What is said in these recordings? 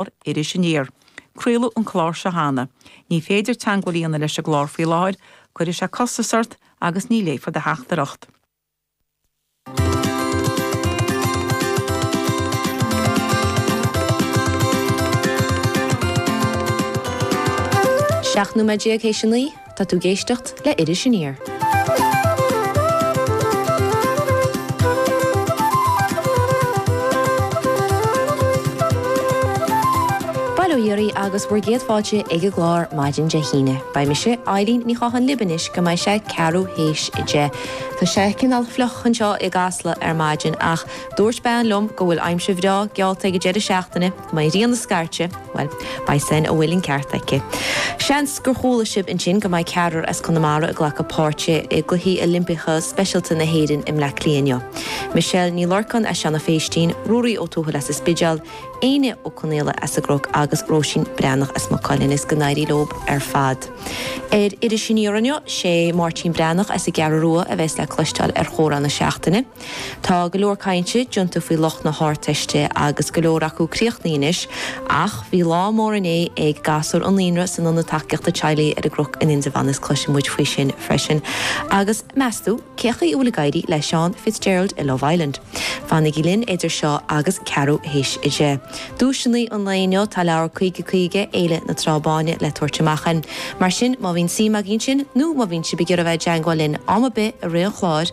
clár Iris Aniar. Craoladh an clár seo cheana. Ní féidir teangmháil a dhéanamh leis an gclár faoi láthair, cuirfidh sé costas ort agus ní léifear do theachtaireacht. Seacht nóiméad déag théis a naoi. Tá tú ag éisteacht le Iris Aniar. Bail ó Dhia oraibh agus bhur gcéad fáilte ag an gclár maidin Dé hAoine. Beidh mise, Eibhlín Ní Chatháin libh anois go mbeidh sé ceathrú théis a deich. Tá sé cineál fliuch anseo i gCasla ar maidin ach dúirt bean liom go bhfuil aimsir bhreá geallta ag an deireadh seachtaine. Go maire na Scairte, Bhuel, beidh súil 'am go bhfuil an ceart aici. Seans gur chuala sibh ansin go mbeidh ceathrar as Conamara ag glacadh páirt i gCluichí Oilimpeacha Speisialta na hÉireann i mBleá Cliath inniu. Michelle Ní Lorcáin as Seanadh Phéistín, Ruairí Ó Tuathail as an Spidéal, Éinne Ó Conaola as an gCnoc agus Róisín Breathnach as Maigh Cuilinn. Is go n-éirí leo ar fad. Ar Iris Aniar inniu, sé Máirtín Breathnach as an gCeathrú Rua a bheas le cloisteáil ar chomhrá na seachtaine. Tá go leor cainte déanta faoi lucht na hArdteiste agus go leor acu críochnaithe anois, ach bhí lá mór inné ag gasúir an naíonra san Ionad Tacaíochta Teaghlaigh ar an gCroc in Indreabhán is cloisfidh muid faoi sin freisin. Agus meastú cén chaoi a bhfuil ag éirí le Seán Fitzgerald i Love Island? Fanaigí linn idir seo agus ceathrú théis a deich. Duaiseanna an lae inniu, tá leabhar 50 50, Fhéile na Trá Báine, le tabhairt amach ann. Mar sin má bhíonn suim agaibh ansin nó má bhíonn sibh ag iarraidh a bheith i dteangmháil linn am ar bith i rith an chláir,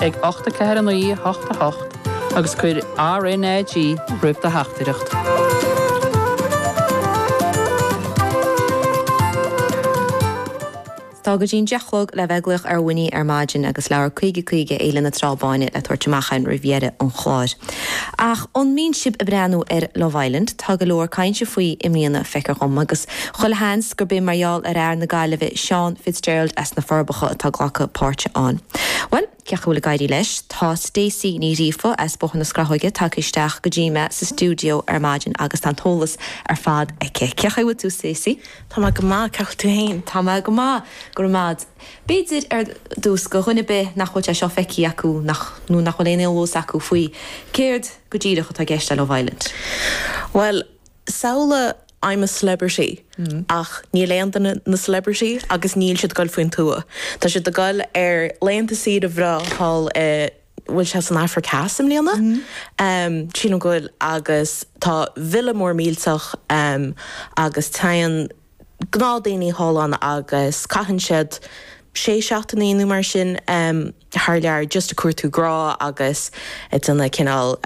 ag, ocht a ceathair a naoi a hocht a hocht agus cuir RNAG roimh do theachtaireacht. Tá go dtína deich a chlog le bheith ag glaoch ar Winnie ar maidin agus leabhar caoga caoga Fhéile na Trá Báine le tabhairt amach ann roimh dheireadh an chláir. Ach an mbíonn sibh ag breathnú ar Love Island? Tá go leor cainte faoi i mbliana, feicear dhom, agus Chuile sheans gurb é mar gheall ar fhear na Gaillimhe Seán Fitzgerald as na Forbacha atá ag glacadh páirt ann. Bhuel, cén chaoi a bhfuil ag éirí leis? Tá Stacey Ní Ghríofa as Bóthar na Scrathóige tagtha isteach go dtí mé sa stiúideo ar maidin agus tá an t-eolas ar fad aici. Cén chaoi a bhfuil tú Stacey? Tá mé go maith, cén chaoi a bhfuil tú fhéin? Tá mé go maith, go raibh maith 'ad. B'fhéidir ar dtús, do dhuine ar bith nach bhfuil sé seo feicthe acu nach, nó nach bhfuil aon eolas acu faoi, céard go díreach atá i gceist le Love Island? Bhuel, Samhlaigh I'm a Celebrity ach níl aon duine ina celebrity agus níl siad ag goil faoin tuath. Tá siad ag goil ar laethanta saoire breá thall i, bhfuil sé san Afraic Theas i mbliana? Sílim go bhfuil agus tá villa mór millteach agus teigheann, gnáth daoine thall ann agus caitheann siad sé seachtainí nó mar sin thar lear just ag cuartú grá agus ag déanamh cineál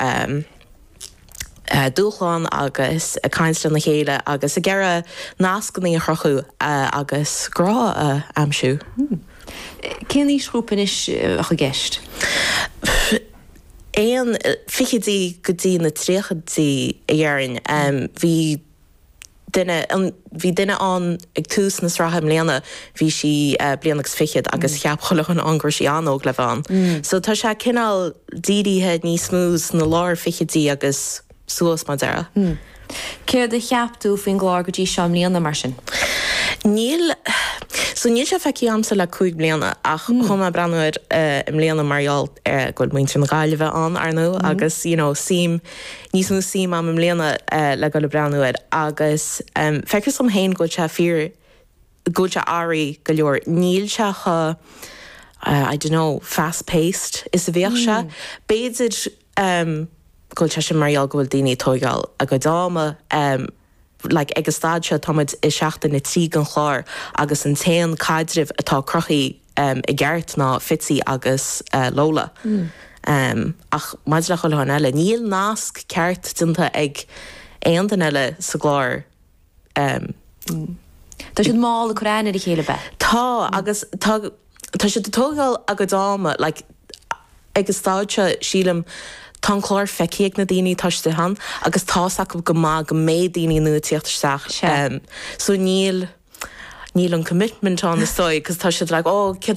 dúshlán agus ag caint lena chéile agus ag iarraidh nascannaí a chruthú agus grá a aimsiú. Hmm. Cén aoisghrúpa anois a bheadh i gceist? Ó na fichidí go dtí na tríochaidí a déarfainn. Bhí duine ann, bhí duine ann ag tús na sraithe i mbliana, bhí sí bliain agus fiche agus cheap chuile dhuine ann go raibh sí an-óg le bheith ann. So tá sé cineál dírithe níos mó sna lár fichidí agus suas mar a déarfá. Céard a cheap tú faoin gclár go dtí seo i mbliana mar sin? Níl, so níl sé feicthe agamsa le cúig bliana ach chinn mé breathnú air i mbliana mar gheall go bhfuil muintir na Gaillimhe ann, ar ndóigh, agus you know suím, Níos mó suim agam i mbliana le goil ag breathnú air agus feictear liom féin go bhfuil sé fíor, go bhfuil sé aireach go leor. Níl sé chomh, I don't know, fast paced is a bhíodh sé. B'fhéidir go bhfuil sé sin mar gheall go bhfuil daoine ag tóigeáil a gcuid ama. like ag an stáid seo táimid i seachtain a trí den chlár agus an t-aon caidreamh atá cruthaithe i gceart ná Fitzy agus Lola ach maidir le chuile dhuine eile níl nasc ceart déanta ag aon duine eile sa gclár tá siad mall ag cur aithne ar a chéile bhuel tá agus tá. Tá siad ag tógáil a gcuid ama. Like, ag an stáid seo, sílim, tá an clár feicthe ag na daoine atá istigh ann agus tá's acu go maith go mbeidh daoine nua ag teacht isteach. Sea. So níl, níl an commitment ann is dóigh 'cause tá siad like, oh, céard a.